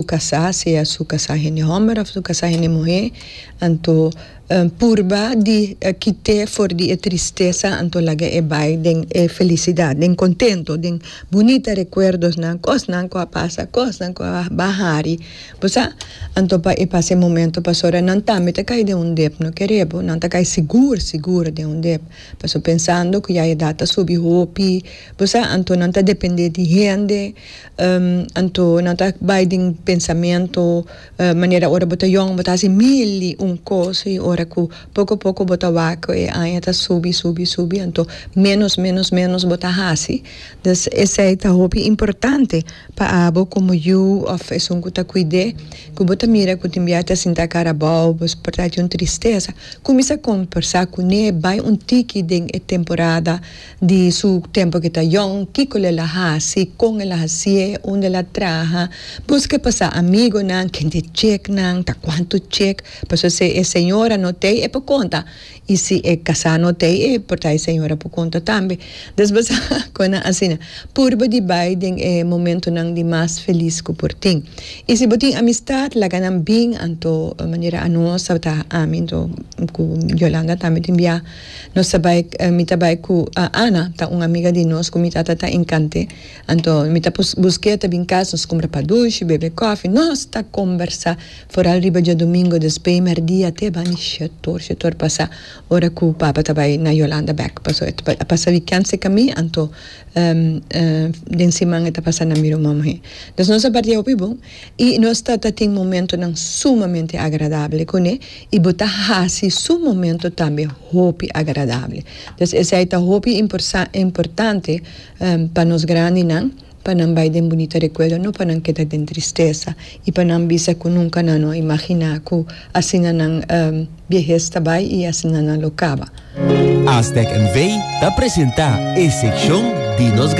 Su casá, sea su casá hende homber of su casá hende muhé, anto purba di kit'é for di e tristesa, anto laga e bai den e felisidat, den contento, den bunita recuerdosnan, cosnan cu a pasa, cosnan cu a ba hari, bo sa, anto pa e pasa e momento pasobra nan tambe ta cay den un dep, no kere bo, nan ta cay sigur, sigur den un dep, pasobra pensando cu ya e edat ta subi hopi, bo sa, anto nan ta depende di hende. Anto nan ta bai den pensamentu manera ora bo ta yòn bo ta hasi mil i un kos i ora ku poko poko bo ta wak ku e aña ta subi subi subi anto ménos ménos ménos bo ta hasi dus esei ta hopi importante pa abo komo yu òf esun ku ta kuid'é ku bo ta mira ku tin biaha ta sinta kara abou bo por ta hasi un tristesa kuminsá kompersá kuné bai un tiki den e temporada. Di su tempo cu ta yong, kico el a haci, con el a hacié, unda el a traha, busque pa sa amigonan kende checnan ta, cuanto chec, pasobra si e señora no t'ei, e por conta, y si e casá no t'ei, e por ta e señora por conta tambe. Entonces bo sa cunan asina. Purba di bay den e momentonan di mas feliz cu por tin. Y si bo tin amistad, laga nan bin, anto manera anos a ta, ami, anto cu Yolanda tambe tin bia. Nos ta bai, mi ta bai cu Ana, ta un amiga di nos cu mi tata ta encant'e. Anto mi ta busc'e ta bin cas, nos cumpra pa dushi, bebe coffee, nos ta combersa foral riba diadomingo des peimer dia te bani shetor, shetor pasa ora cu papa ta bai na Yolanda bek, paso e ta pasa weekend seca mi, anto den siman e ta pasa na mi ruman muhe. Nos a bardia hopi bon. I nos ta ta tin momentonan sumamente agradabel ku ne, i bo ta hasi su momento tambe hopi agradabel. Entonces esei ta hopi importante pa nos grandinan, pa nan bai den bunita rekuerdo, no pa nan keda den tristesa i pa nan bisa ku nunka nan no a imaginá ku asina nan biehes ta bai i asina nan lo kaba. Aztec NV. ta presentá e sekshon di nos.